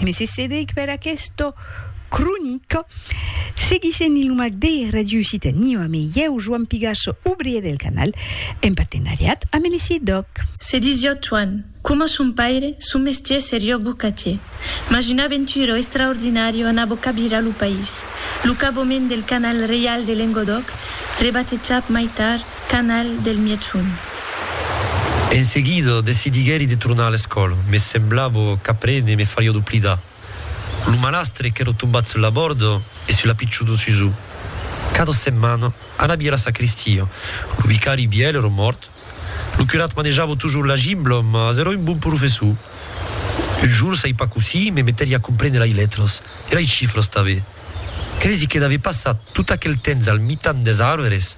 E me se cedec per aquesta cronica. Seguissent Iluma de Radio Occitanie amé ieu, Joan Pigasso, obrier del canal, en partenariat amé le CIDOC. Se disió Toan, coma son paire, son mestier serió bocatier. Mas una aventura extraordinària anabó cabirar lo país, lo caboment del Canal Reial de Lengodòc, rebatejat mai tard, canal del Mièchon. En seguida, decidiguèri de tornar a l'escòla. Me semblava qu'aprene me fariá doblidar lo malastre qu'èra tombat sus la bòrda e sus la pichona Susù. Cada setmana, anavi a la sacristia. Lo vicari vièlh èra mòrt. Lo curat manejava totjorn la gimbla, mas èra un bon professor. Un jorn, sai pas cossí, me metèri a comprene lai letras e lai chifras tanben. Cresi que n'avè passat tot aquel temps al mitan des arvres.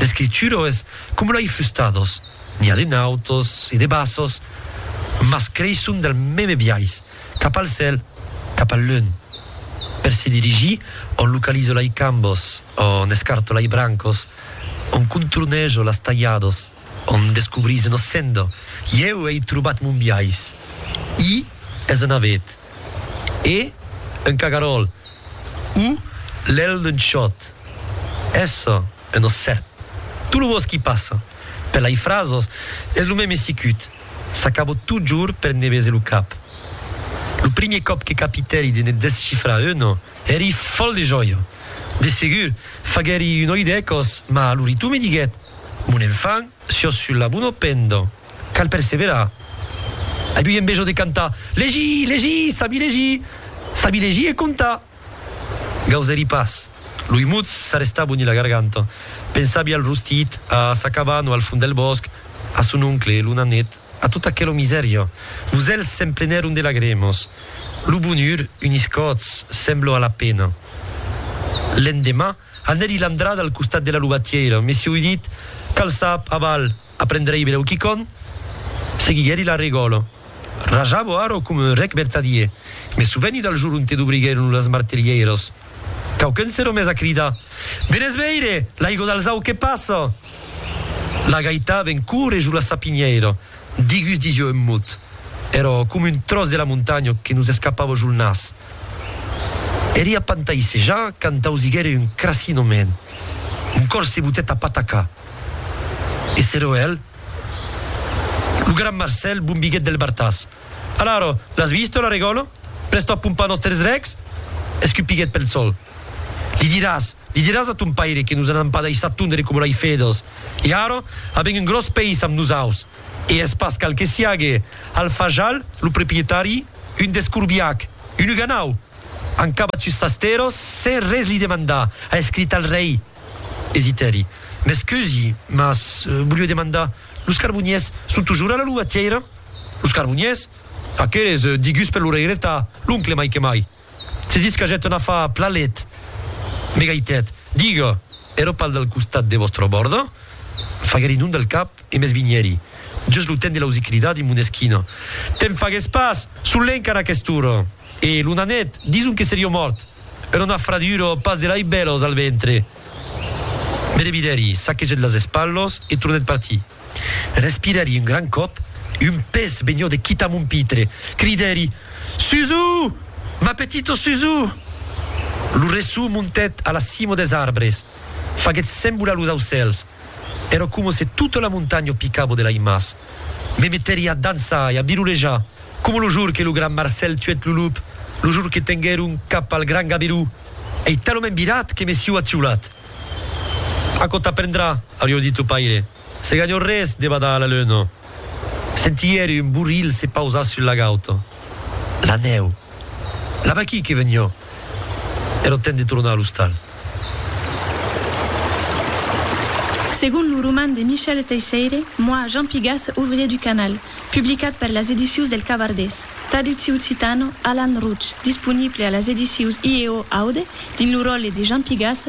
L'escritura es coma lei fustados, n'i a de nautos e de bassos, mas creisson del meme biais, cap al cèl, cap al lun. Per se dirigir, on localizo lei cambos, on escarto lei brancos, on contornejo las talhados. Òm descobrís ena senda. Ieu ei trobat mon biais. I es un avet. E un cagaròl. U lèl d'un chòt. Essa un ossèp. Tot lo bòsqui passa. Per lai frasos es lo mème sicut. S'acabo totjorn per ne bese lo cap. Lo primier còp que capitèri de ne descifrar una. Èri fòl de jòia. De segur, faguèri un oi d'ècos, mas lo ritu me diguèt, Mon enfant, siós sul labuno pendon. Cal perseverar. Ai ui envejo de cantar, Legir! Legir! Sabi legir! Sabi legir e comptar! Gausèri pas. Loi mut s'arrestà boni la garganta. Pensavi al rostit, a sa cabana al fond del bòsc, a son oncle, lo nanet. A tot aquelo misèria, los èlhs s'emplenèron de lagrèmas. Lo bonhur unís còths, semblo a la pena. L'endemà, anèri l'andrada al costat de la lobatièira, mesieu dit, cal sap, aval, aprendrèi berèu quicòm? Seguiguèri la regòla. Rajavo ara coma un rèc vertadier, me soveni del jor onte dobriguèron las martelhèiras. Quauqu'un s'èra mes a cridar, Venètz veire, l'aigo d'Alzau que passa! La gaita ven coure jo la sapinhèira, digus disiò un mot, èrò com un tròç de la montanha que nos escapava jo el nas. Eria pantaissejar quand ausiguère un crassinament. Mon còr se botèt a patacar. E s'erò el, lo gran Marcèl bombiguèt del bartàs. Alaro, l'as visto, la Regòlo? Prèsto a pompar nòsters drechs? escupiguèt Pelçol. Li diràs, li diràs a ton paire que nos anam pas daissar tondre coma lai fedòs. E ara, a ben un gròs peis amb nosaus! E es pas cal que siague al fajal, lo proprietari, un descorbiac, un uganau! An cabat sus sas terras sens res li demandar, a escrit al rei. Desitèri. M'escusi, mas voliu demandar. Los carboniers son tujur a la lugatièira? Los carboniers? Aqueles, digus per l'oreireta, l'oncle mai que mai. Se ditz qu'agèt un afar plalet. Me gaitèt, Diga, ero pas del costat de vòstra bòrda? Faguèri non del cap e m'esvinhèri, just lo temps de l'ausir cridar dins mon esquina, Te'n fagues pas! Son lenc ara aquest'ora! E lo nanet, dison que serió mòrt. Era una fradura, pas de lei bèlos, al ventre. Me revidèri, saquegèt las espalhos e tornèt partir. Respirèri un gran còp, un pes vegnou de quitar mon pitre. Cridèri, Suzu! Ma petito Suzu! Lo resson montèt a la cimo des arbres, faguèt sembolar los aucèls. Èra coma se tota la montanha picava de laimas. Me meteria a dançar e a birolejar, coma lo jour que lo gran Marcèl tuèt lo lup, lo jour que tenguèron cap al gran Gaberú. Ei talament virat que me siu atiolat. Aquò t'aprendrà, aurió dit lo paire, se ganhò res de badar a la leuna. Sentièri un borrilh se pausar sul lagaut. la nèu. La vaquí que venió e lo temps de tornar a l'ostal. Segon lo roman de Michel Teisseire, Moi, Jean Pigas, ouvrier du canal, publicat per las edicius del Cavardés, traducti occitano, Alan Rouch, disponible a las edicius IEO Aude dins lo ròtle de Jean Pigas,